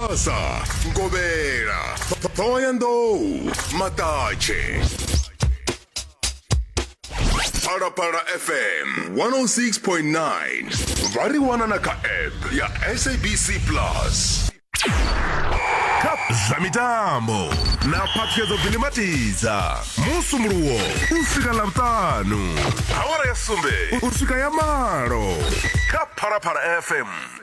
Tshivhasa, Nkovhela, Ṱhohoyanḓou, Maṱatshe. Phalaphala FM 106.9 vha ri wana na kha app ya SABC Plus. Kha zwa mitambo na phaṱhuyedzo Billy Matiza musumuluwo u swika ḽavhuṱanu awara ya sumbe u swika ya malo kha Phalaphala FM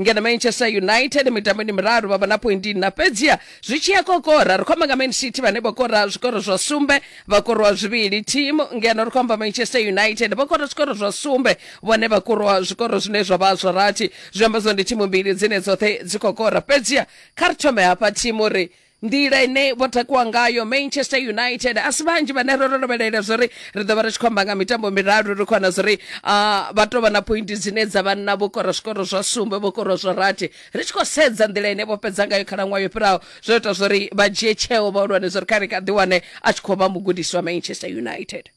ngeno manchester united mitamboni miraru vha vha na pointi na fhedziha zwi tshi ya kokora ri khomba nga man city vhane vho kora zwikoro zwa sumbe vha korwa zwivhili thimu ngeno ri khomba manchester united vho kora zwikoro zwa sumbe vhone vha korwa zwikoro zwine zwa vha zwa rathi zwi amba zwa ndi thimu mbili dzine dzoṱhe dzi khou kora fhedziha kha ri thome hafha thimu ri nḓila ine vho takuwa ngayo manchester united a si vhanzhi vhane ro rovhelela zwo ri ri ḓo vha ri tshi khou amba nga mitambo miraru ri khou wana zwo ri ah, vha tou vha na pointi dzine dza vha nna vho kora zwikoro zwa sumbe vho kora zwa rathi ri tshi khou sedza nḓila ine vho fhedza ngayo khalaṅwaha yo fhiraho zwo ita zwo ri vha dzhie tsheo vhahulwane zwo ri kha ri kha ḓiwane a tshi khou vha mugudisi wa manchester united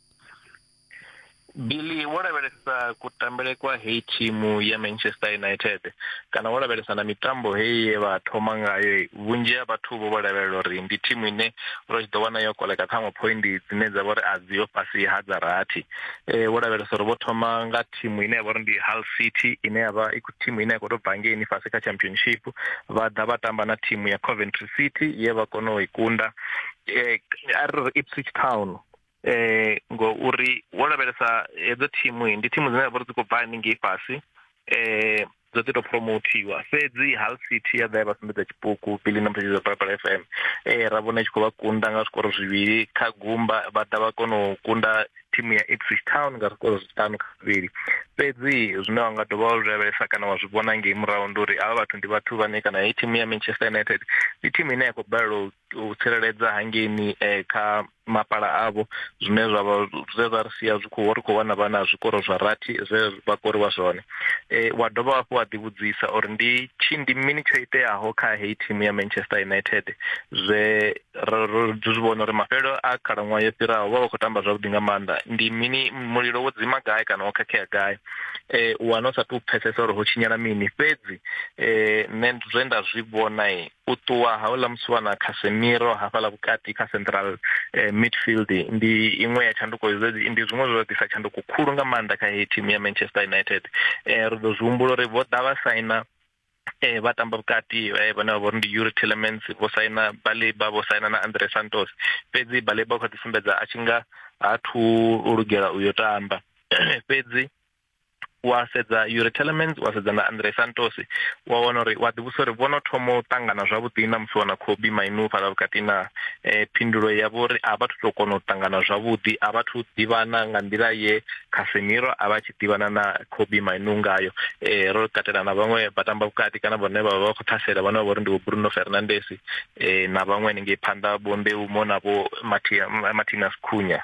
Billy wo lavhelesa kutambele kwa heyi thimu ya Manchester United kana wo lavhelesa na mitambo heyi ye vha thoma ngayo vhunzhi ha vhathu vho vho lavhelela uri ndi thimu ine ro tshi ḓo wana yo koleka ṱhaṅwe point dzine dza vha uri a dzi yo fhasi ha dza rathi eh, wo lavhelesa uri vho thoma nga thimu ine ya vha uri ndi Hull City ine ya vha i thimu ine ya khou tou bva ngeini fhasi kha championship vha ḓa vha tamba na thimu ya Coventry City ye vha kona u i kunda eh, a ri ri Ipswich Town eh ngo uri wo lavhelesa hedzo thimu ndi thimu dzine vha dzi khou bva haningei fhasi eh dzo ḓi to promothiwa fhedzi Hull City ya ḓa ya vha sumbedza tshipuku Billy na mphezi Phalaphala FM eh ra vhona tshi khou vha kunda nga zwikoro zwivhili kha gumba vha ḓa vha kona u kunda thimu ya Ipswich Town nga zwikoro zwiṱanu kha zwivhili fhedzi zwine wa nga dovha wa zwi lavhelesa kana wa zwi vhona ngei murahu ndi uri avha vhathu ndi vhathu vhane kana hei thimu ya Manchester United ndi thimu ine ya khou balelwa u tsireledza hangeini eh, kha mapala avho zwine zwavha zwe zwa ri sia zwi khou ri khou wana vha na zwikoro zwa rathi zwe vha koriwa zwone eh, wa dovha hafhu wa ḓivhudzisa uri ndi tshi ndi mini tsho iteaho kha heyi thimu ya manchester united zwe ro zwi vhona uri mafhelo a khalaṅwaha yo fhiraho vha vha khou tamba zwavhuḓi nga maanḓa ndi mini mulilo wo dzima gai kana wo khakhea gai eh, u wana u sa tou pfesesa uri ho tshinyala mini fhedzi eh, nṋe zwe nda zwi vhona u ṱuwa ha uḽa musiwana Casemiro hafhaḽa vhukati kha central eh, midfield ndi iṅwe ya tshanduko ndi zwiṅwe zwo ḓisa tshanduko khulu nga maanḓa kha heyi thimu ya Manchester United eh, ri ḓo zwi humbula uri vho ḓa vha saina eh vha tamba vhukati eh vhane vha vhori ndi Yuri Tillemans vho saina Baleba vho saina na Andre Santos fhedzi Baleba kha ḓi sumbedza a tshi nga ha thu lugela u yo tamba fhedzi wa sedza Yuri Telemans wa sedza na Andre Santos wa wana uri wa ḓivhusa uri vhono thoma u ṱangana zwavhuḓi na musi wana Kobe Mainu fhala vhukati na eh, phindulo ya vhori a vha thu kona u ṱangana zwavhuḓi a vha thu ḓivhana nga nḓila ye Casemiro a vha tshi ḓivhana na Kobe Mainu ngayo eh, ro katela na vhaṅwe vha tamba vhukati kana vhone vha vha khou ṱhasela vhone vha vhori ndi vho Bruno Fernandes eh, na vhaṅwe haningei phanḓa vho Mbeumo na vho Martinez Cunha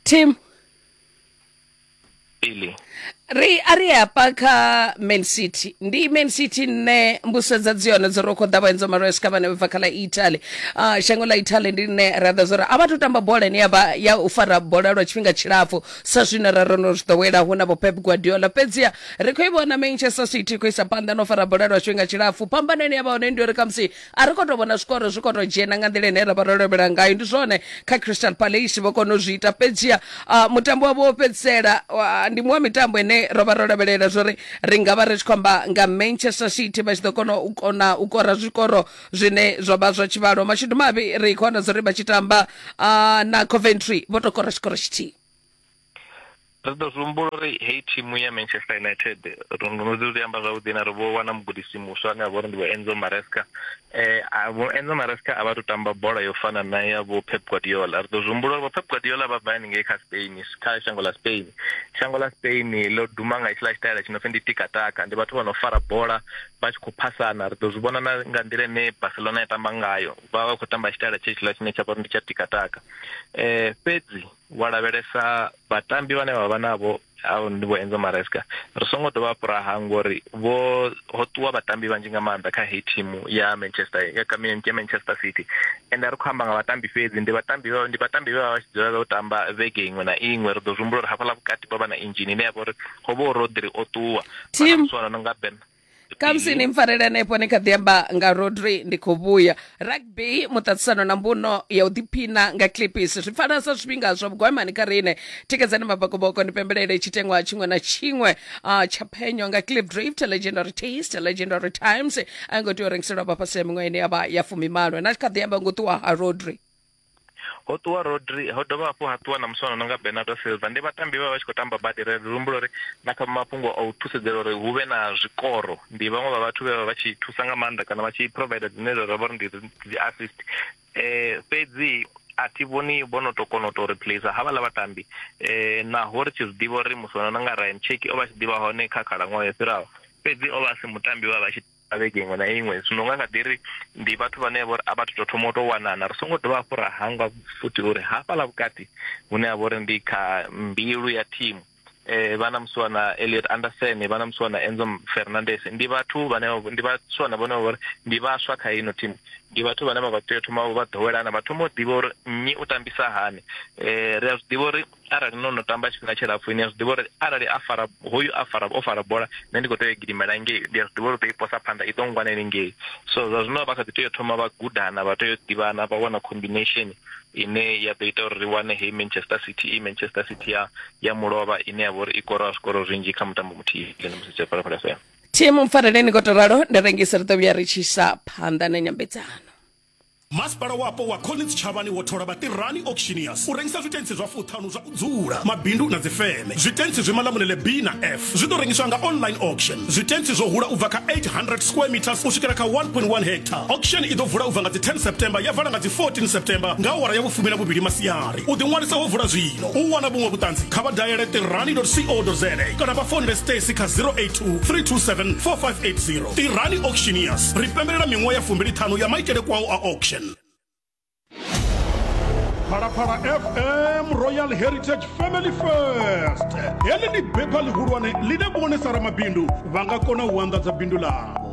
tim ili ri a ri hafha kha man city ndi man city nne mbuso dza dzione dzo ro khoḓa vhaenzo maresca vhane vha bva kha ḽa italy uh, shango ḽa italy ndi ḽine ra ḓa zwori a vha to tamba bola ine yavha ya u fara bola lwa tshifhinga tshilapfu sa zwine ra rono zwi ḓowela hu na vho pep guardiola fhedziha ri khou i vhona manchester city i khou isa phanḓa no fara bola lwa tshifhinga tshilapfu phambano ine yavha hone ndi uri khamusi a ri khou tou vhona zwikoro zwi khou tou dzhena nga nḓila ine ra vha ro lovhela ngayo ndi zwone kha crystal palace vho kona u zwi ita fhedziha ah, mutambo wavho wo fhedzisela wa- ndi muṅwe wa mitambo ine ro vha ro lavhelela zwori ri nga vha ri tshi khou amba nga manchester city vha tshi ḓo kona u kona u kora zwikoro zwine zwa vha zwa tshivhalo mashudu mavhi ri khou wana zwori vha tshi tamba ah, na coventry vho tou kora tshikoro tshithihi Ri ḓo zwi humbula uri heyi thimu ya Manchester United ri ndo no ḓi amba zwavhuḓi na ri vho wana mugudisi muswa ane a vha uri ndi vho Enzo Maresca eh vho Enzo Maresca a vha to tamba bola yo fana na ya vho Pep Guardiola ri ḓo zwi humbula uri vho Pep Guardiola vha bva haningei kha Spain kha shango ḽa Spain shango ḽa Spain ḽo duma nga itshiḽa tshitaela tshi no pfi ndi tikataka ndi vhathu vha no fara bola vha tshi khou phasana ri ḓo zwi vhona na nga nḓila ine Barcelona ya tamba ngayo vha vha khou tamba tshitaela tshe tshiḽa tshine tsha vha uri ndi tsha tikataka eh fhedzi Wa lavhelesa vhatambi vhane vha vha navho au ndi vho Enzo Maresca ri songo dovha hafhu ra hangwa uri vho ho ṱuwa vhatambi vhanzhi nga maanḓa kha heyi thimu ya Manchester ya kamini ya Manchester City ende a ri khou amba nga vhatambi fhedzi ndi vhatambi vha ndi vhatambi vha vha tshi dzulela u tamba vhege iṅwe na iṅwe ri ḓo zwi humbula uri hafhaḽa vhukati vha vha na injini ine ya vha uri ho vha uri Rodri o ṱuwa vha na muswana no nga Ben kamusi ni mpfarele hanefho ni kha ḓi amba nga rodri ndi khou vhuya rugby muṱaṱisano na mbuno ya u ḓiphina nga clipis zwi pfala sa zwifhinga zwa vhugwamani kha riṋe tikedzani mabokoboko ni pembelele tshiteṅwa tshiṅwe na tshiṅwe ah, tsha phenyo nga clip drift legendary taste legendary times a ngo tea u rengiselwa vha fhasi ya miṅwaha ine ya vha ya fumimalo na kha ḓi amba ngo ṱuwa ha rodri ho ṱuwa rodri ho dovha hafhu ha ṱuwa na muswana no nga bernardo silva ndi vhatambi vha vha tshi khou tamba badi ri humbula uri na kha mafhungo a u thusedzela uri hu vhe na zwikoro ndi vhaṅwe vha vhathu vhe vha vha tshi thusa nga maanḓa kana vha tshi provider dzine zwa vha uri ndi dzi assist um fhedzi a thi vhoni vho no to kona u to replace havhaḽa vhatambi um naho ri tshi zwi ḓivha uri muswana no nga ryan cheki o vha tshi ḓivha hone kha khalaṅwaha yo fhiraho fhedzi o vha a si mutambi vha vha tshi a vhege iṅwe na iṅwe zwino nga nga ḓi ri ndi vhathu vhane vha uri a vha tou thoma u tou wanana ri songo dovha hafhu ra hangwa futhi uri hafhaḽa vhukati hune ha vha uri ndi kha mbilu ya thimu eh vhana muswana Elliot Anderson vhana muswana Enzo Fernandez ndi vhathu vhane ndi vhaswana vhane vha ndi vhaswa kha ino thimu ndi vhathu vhane vha vha tea thoma vha ḓowelana vha thoma u ḓivha uri nnyi u tambisa hani eh ri a zwi ḓivha uri Arali no no tamba tshifhinga tshilapfu ni a zwi ḓivha uri arali a fara hoyu a fara o fara bola nṋe ndi kho tea u gidimela ngei ndi a zwi ḓivha uri ḓo i posa phanḓa i ḓo ngwana ni ngei so zwa zwino vha kha ḓi tea u thoma vha gudana vha tea u ḓivhana vha wana combination ine ya ḓo ita uri ri wane heyi Manchester City i Manchester City ya ya mulovha ine ya vha uri i kora zwikoro zwinzhi kha mutambo muthihi ndi musi tshe phalaphala FM thimu mpfareleni ngo to ralo ndi rengise ri ḓo vhuya ri tshi sa phanḓa na nyambedzano masipala wapo wa collins tshavhani wo thola vhatirani auctioneers u rengisa zwitentsi zwa fuṱhanu zwa u dzula mabindu na dzifeme zwitentsi zwi malamulele b na f zwi ḓo rengiswa nga online auction zwitentsi zwo hula u bva kha 800 square meters u swikela kha 1.1 hectare auction i ḓo vula u bva nga dzi 10 september ya vala nga dzi 14 september nga awara ya vhufumi na vhuvhili masiari u ḓiṅwalisa ho vula zwino u wana vhuṅwe vhuṱanzi kha vha dayele tirani co za kana vha fonele stacy kha 082 3274580 tirani auctioneers ri pembelela miṅwaha ya fumbiliṱhanu ya maitele kwao a auction phalaphala fm royal heritage family first heḽi ndi bepha ḽihulwane ḽine vhone sa ramabindu vha nga kona u anḓadza bindu ḽavho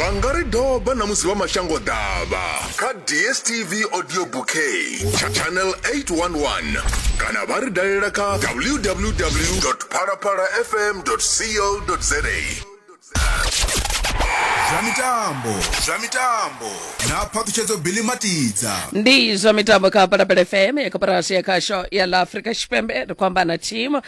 vha nga ri doba na musi vha mashango ḓavha kha dstv audio bouquet tsha channel 811 kana vha ri dalela kha www phalaphala fm co za zwa mitambo zwa mitambo na phaṱhutshedzo bili matidza ndi zwa mitambo kha palapele fm ya koporasi ya khasho ya ḽa afrika tshipembe ri khou amba na thimu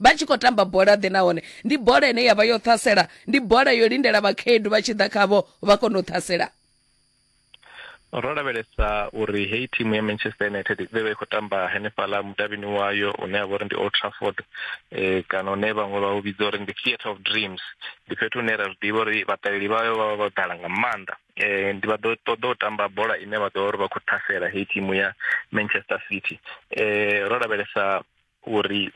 vha tshi khou tamba bola ḓe nahone ndi bola ine ya vha yo ṱhasela ndi bola yo lindela vhakhaedu vha tshi ḓa khavho vha kone u ṱhasela ro lavhelesa uri heyi thimu ya manchester united vhe vha i khou tamba henefhaḽa mudavhini wayo une a vha uri ndi old trafford um kana une vhaṅwe vha u vhidza uri ndi theatre of dreams ndi fhethu hune ra zwi ḓivha uri vhaṱaleli vhayo vha vha vho ḓala nga maanḓa eh ndi vha ḓo ṱoḓa u tamba bola ine vha ḓo uri vha khou ṱhasela heyi thimu ya Manchester City eh ro lavhelesa uri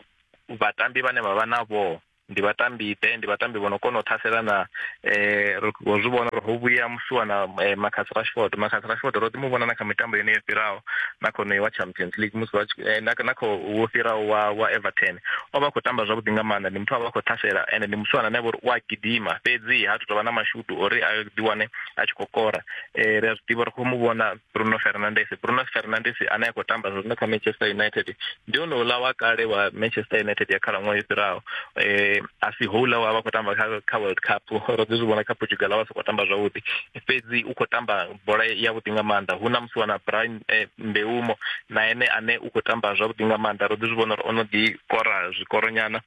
vhatambi vhane vha vha navho ndi vhatambi ḓe ndi vhatambi vho no kona u thasela na eh ro zwi vhona uri ho vhuya musiwa na eh, Marcus Rashford Marcus Rashford ro ḓi mu vhona na kha mitambo yeneyo fhiraho na kho wa Champions League musi vha eh, na na kho wo fhiraho wa wa Everton o vha khou tamba zwavhuḓi nga maanḓa ndi muthu a vha khou thasela ende ndi musiwana na uri u a gidima fhedzi ha thu tovha na mashudu uri a ḓi wane a tshi khou kora eh ri a zwi ḓivha ri khou mu vhona Bruno Fernandes Bruno Fernandes ane a khou tamba zwino kha Manchester United ndi one uḽa wa kale wa Manchester United ya khalaṅwaha i fhiraho eh a si houḽa wa vha khou tamba kha kha World Cup ro ḓi zwi vhona kha Portugal a vha sokou tamba zwavhuḓi fhedzi u khou tamba bola ya vhuḓi nga maanḓa hu na musi wana Brian eh, Mbeumo na ene ane u khou tamba zwavhuḓi nga maanḓa ro ḓi zwi vhona uri ono ḓi kora zwikoronyana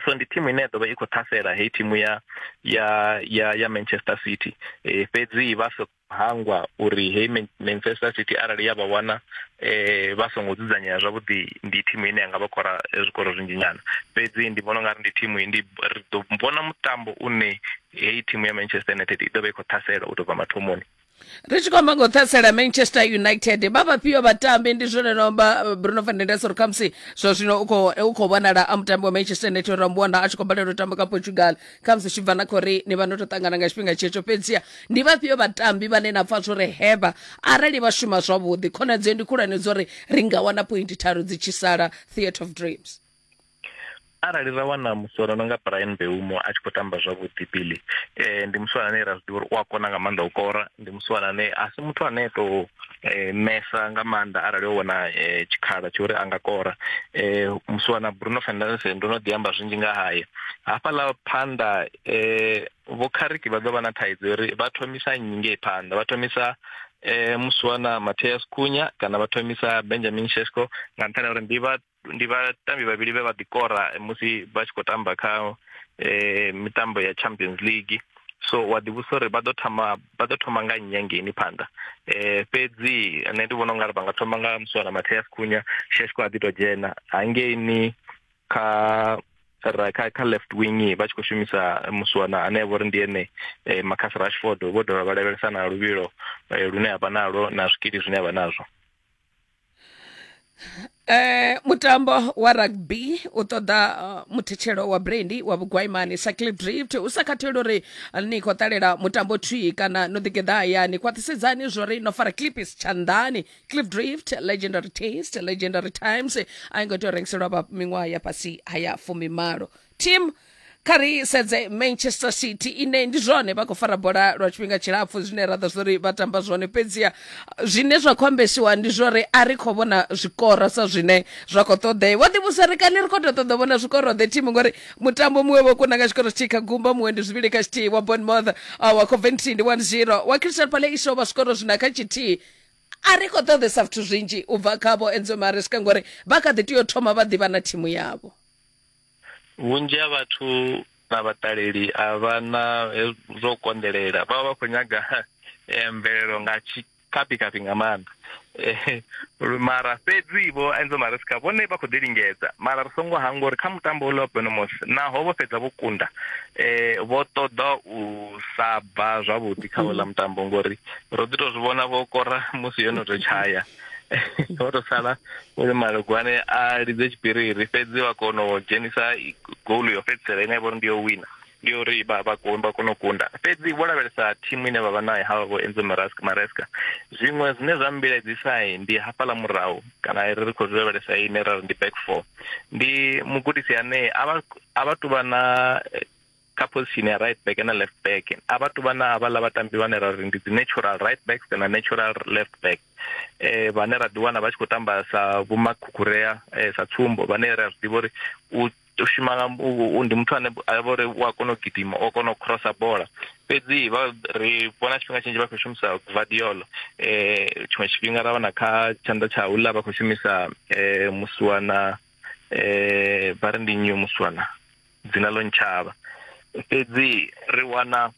so ndi thimu ine ya ḓovha i khou ṱhasela heyi thimu ya ya ya ya manchester city e, fhedzi vha so hangwa uri heyi manchester city arali ya vha wana e, vha songo dzudzanyea zwavhuḓi ndi thimu ine ya nga vha kora e, zwikoro zwinzhi nyana fhedzi ndi vhona ungari ndi thimu ndi ri ḓo vhona mutambo une heyi thimu ya manchester united i ḓo vha i khou ṱhasela u tou bva mathomoni ri tshi khou amba nga u ṱhasela manchester united vha vhafhio vhatambi ndi zwone no amba eh, bruno fernandes uri khamusi zwa zwino u khou vhonala a mutambi wa manchester united uri ambuwana a tshi khou balelwa u tamba kha portugal khamusi tshi bva na khou ri ni vha no tou ṱangana nga tshifhinga tshetsho fhedzia ndi vhafhio vhatambi vhane na pfa zwori hevha arali vha shuma zwavhuḓi khonadzeo ndi khulwane dzo ri ri nga wana pointi tharu dzi tshi sala theatre of dreams arali ra wana musoro no nga Brian Beumo a tshi khou tamba zwavhuḓi Billy eh ndi musoro ane ra zwiḓivha uri u a kona nga maanḓa u kora ndi musoro ane a si muthu ane to eh, mesa nga maanḓa arali o wana eh, tshikhala tsho uri a nga kora eh, musoro na Bruno Fernandes ndo no ḓi amba zwinzhi nga haye hafhaḽa phanḓa eh, vho Khariki vha ḓo vha na thaidzo uri vha thomisa nnyi ngei phanḓa vha thomisa eh musuwana Mateus Kunya kana vha thomisa Benjamin Shesko nga nṱhani uri ndi vha ndi vhatambi vhavhili vhe vha ḓikora musi vha tshi khou tamba kha eh, mitambo ya champions league so wa ḓivhusa uri vha ḓo thoma vha ḓo thoma nga nnyi hangeini phanḓa eh fhedzi nṋe ndi vhona u nga ri vha nga thoma nga muswana matheas khunya sheshko a ḓi to dzhena hangeini kha ra kha kha left wing vha tshi khou shumisa muswana ane vho ri ndi ene eh, Marcus Rashford vho dovha vha lavhelesa na luvhilo eh, lune avha nalo na zwikili zwine avha nazwo Eh, mutambo wa rugby u ṱoḓa uh, muthetshelo wa brandi wa vhugwaimani cycle drift u sa khatheli uri ni khou ṱalela mutambo thwii kana no ḓigeḓa hayani khwaṱhisedzani zwori no fara clipis tshanḓani clip drift legendary taste legendary times a i ngo tea u rengiselwa vha miṅwaha ya fhasi ha ya fumimalo team kha ri sedze manchester city ine ndi zwone vha khou fara bola lwa tshifhinga tshilapfu zwine ra ḓo zwori vha tamba zwone fhedziha zwine zwa khou ambesiwa ndi zwori a ri khou vhona zwikoro sa zwine zwa khou ṱoḓea vho ḓivhusa ri kani ri khou tou ṱoḓa vhona zwikoro the team ngori mutambo muṅwe vho kuna nga tshikoro tshithihi kha gumba muṅwe ndi zwivhili kha tshithihi wa bonmouth ah, wa coventry ndi one zero wa crystal pale iso vha zwikoro zwina kha tshithihi a ri khou ṱoḓesa zwithu zwinzhi u bva khavho enzo maresca ngori vha kha ḓi tea u thoma vha ḓivha na thimu yavho vhunzhi ha vhathu na vhaṱaleli a vha na zwo konḓelela vha vha vha khou nyaga eh, mvelelo nga tshikapikapi nga maanḓa eh, mara fhedzi vho enzo mariska vhone vha khou ḓi lingedza mara ri songo hangwa uri kha mutambo uḽa wa benomos naho vho fhedza vho kunda um vho ṱoḓa u sa bva zwavhuḓi kha uḽa mutambo ngori ro ḓi to zwi vhona vho kora musi yo no to tshaya o to sala uri malugwane a lidze tshipiriri fhedzi wa kona u dzhenisa goal yo fhedzisela ine vhori ndi yo wina ndi yo uri vha vha kona u kunda fhedzi vho lavhelesa thimu ine vha vha nayo havha vho enzo maraska maraska zwiṅwe zwine zwa mmbiledzisa ndi hafhaḽa murahu kana ri ri khou zwi lavhelesa ine ra ri ndi back four ndi mugudisi ane a vha a vha tuvha na kha position ya right back na left back a vha tu vha na havhaḽa vhatambi vhane ra ri ndi dzi natural right backs na natural left back eh vhane ra ḓi wana vha tshi khou tamba sa vhomakhukhurea eh, sa tsumbo vhane ra zwi ḓivha uri u shuma nga ndi muthu ane a vha uri u a kona u gidima o kona u crossa bola fhedzi vha ri vhona tshifhinga tshinzhi vha khou shumisa guardiolo eh tshiṅwe tshifhinga ra wana kha tshanḓa tsha hula vha khou shumisa eh musiwana eh vha ri ndi nyu musiwana dzina ḽo ntshavha fhedzi ri wana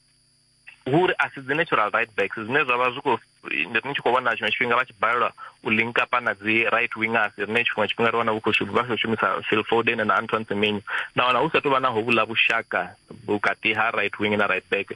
uri a si dzi natural right backs zwine zwa vha zwi khou ni tshi khou vhona tshiṅwe tshifhinga vha tshi balelwa u linka pa na dzi right wingers rine tshiṅwe tshifhinga ri wana vhu khou shuma vha khou shumisa Phil Foden na Antoine Semenyo na wana hu sa tou vha na hovhula vhushaka vhukati ha right wing na right back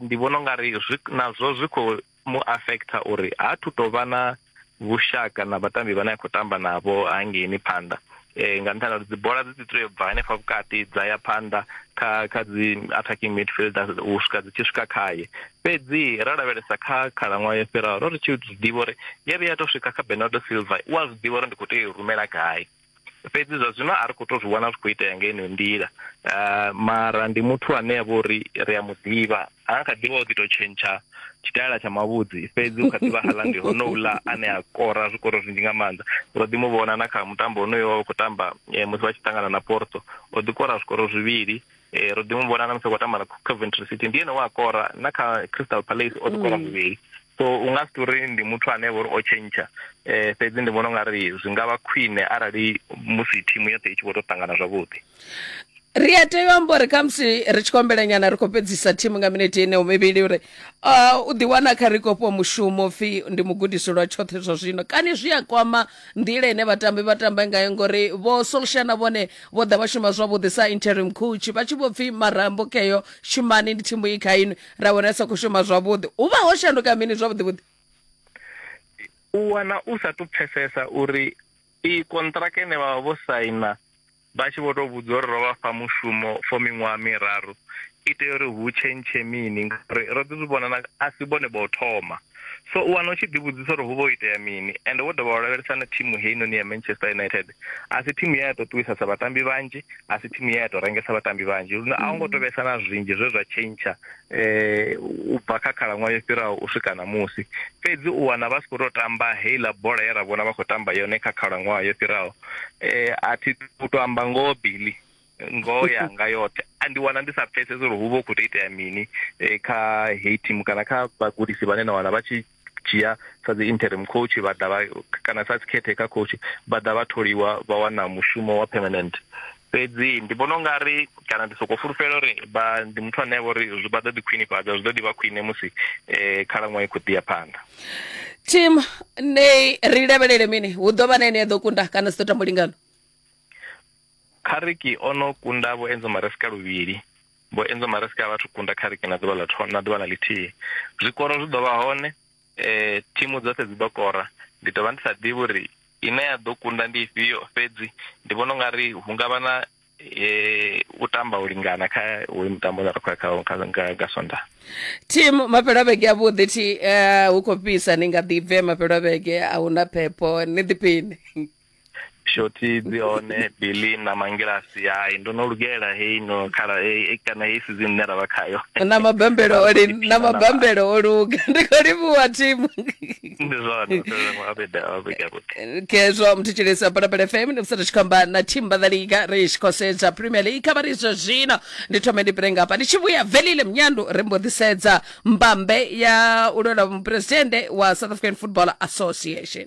ndi vhona ungari nazwo zwi khou mu affecta uri ha thu to vha na vhushaka na vhatambi vhane a khou tamba navho hangeini phanḓa eh nga nṱhani uri dzibola dzi tea u bva hanefha vhukati dza ya phanḓa kha kha dzi attacking midfielder u swika dzi tshi swika khaye fhedzi ra lavhelesa kha khalaṅwaha yo fhiraho ro ri tshi ḓivha uri ya vhuya to swika kha Bernardo Silva wa zwi ḓivha uri ndi khou tea u rumela gai fhedzi zwa zwino a ri khou tou zwi vhona zwi khou itea nga ino nḓila ah, mara ndi muthu ane ya vha uri ri a mu ḓivha ha kha ḓivha o ḓi tou tshentsha tshitaela tsha mavhudzi fhedzi u kha ḓivha hala ndi honouḽa ane a kora zwikoro zwinzhi nga maanḓa ro ḓi mu vhona na kha mutambo honoyo wa khou tamba eh, musi vha tshi ṱangana na porto o ḓi kora zwikoro zwivhili e, ro ḓi mu vhona na musi khou tamba na coventry city ndi ene wa kora na kha crystal palace o ḓi kora mm. muvhili so u nga si tori ndi muthu ane vha uri o tshentsha um fhedzi ndi vhona u nga ri zwi nga vha khwine arali musi thimu yoṱhe i tshi vho tou ṱangana zwavhuḓi ri a tea u amba uri khamusi ri tshi kombela nyana ri khou fhedzisa thimu nga minete ine u mivhili uri uh, u ḓiwana kha ri khou fhiwa mushumo pfhi ndi mugudisi lwa tshoṱhe zwa zwino kani zwi a kwama nḓila ine vhatambi vha tambe ngayo ngori vho solsha na vhone vho ḓa vha shuma zwavhuḓi sa interim coach vha tshi vho pfhi marambo keyo shumani ndi thimu i kha inwi ra vhona sa khou shuma zwavhuḓi hu vha ho shanduka mini zwavhuḓi vhuḓi u wana u sa tu pfesesa uri i kontraka ine vha vha vho saina Vha tshi vho tou vhudzwa uri ro vha fha mushumo for miṅwaha miraru i tea uri hu tshentshe mini ngauri ro ḓi zwi vhona na a si vhone vha u thoma. So u wana u tshi ḓivhudzisa uri hu vha ho itea mini ende wo dovha wa lavhelesa na thimu heinoni ya Manchester United a si thimu ye ya tou ṱuwisa sa vhatambi vhanzhi, a si thimu ye ya tou rengesa vhatambi vhanzhi lune a u ngo tou vhesa na zwinzhi zwe zwa tshentsha um u bva kha khalaṅwaha yo fhiraho u swika ṋamusi. Fhedzi u wana vha si khou tou tamba heiḽa bola ye ra vhona vha khou tamba yone kha khalaṅwaha yo fhiraho eh a thi u to amba ngoho Billy ngoho yanga yoṱhe a ndi wana ndi sa pfesesi uri hu vha hu khou tou itea mini eh, kha heyi thimu kana kha vhagudisi vhane na wana vha tshi dzhia sa dzi interim coach vha ḓa vha kana sa dzi caretaker coach vha ḓa vha tholiwa vha wana mushumo wa permanent fhedzi ndi vhona ungari kana ndi soko fulufhela uri vha ndi muthu ane vha uri zwi vha ḓo ḓi khwinifhadza zwi ḓo ḓi vha khwine musi um khalaṅwaha i khou ḓi ya phanḓa tim ne ri lavhelele mini hu ḓo vha na ene ya ḓo kunda kana si ḓo tamba lingano khariki o no kunda vho enzo maresika luvhili vho enzo maresika a vhathu kunda khariki na ḓuvha ḽa na ḓuvha ḽa ḽithihi zwikoro zwi ḓo vha hone eh, thimu dzoṱhe dzi ḓo kora ndi ḓo vha ndi sa ḓivhi uri ine ya ḓo kunda ndi ifhio fhedzi ndi vhona u nga ri hu nga vha na eh, u tamba u lingana kha hoyu mutambo une ra khou ya khawo nga- nga- nga sonda team mafhelo a vhege avhuḓi thi eh, hu khou fhisa ni nga ḓi bve mafhelo a vhege a hu na phepho ni ḓiphiṋe shoti dzi hone bilim na mangilasi hai ndo no lugela hei no khala hei kana hei sizini ine ra vha khayo na mabambelo o li na mabambelo o luga ndi khou livhuwa thimu ndi zwone kezwo muthu tshilisa balabala fm ndi musathu tshi khou amba na thimu vhaḓaliga ri tshi khou sedza premier league kha vha ri zwa zwino ndi thome ndi pire ngafha ndi tshi vhuya velile mnyandu ri mbo ḓi sedza mbambe ya u lwela mupresidennde wa south african football association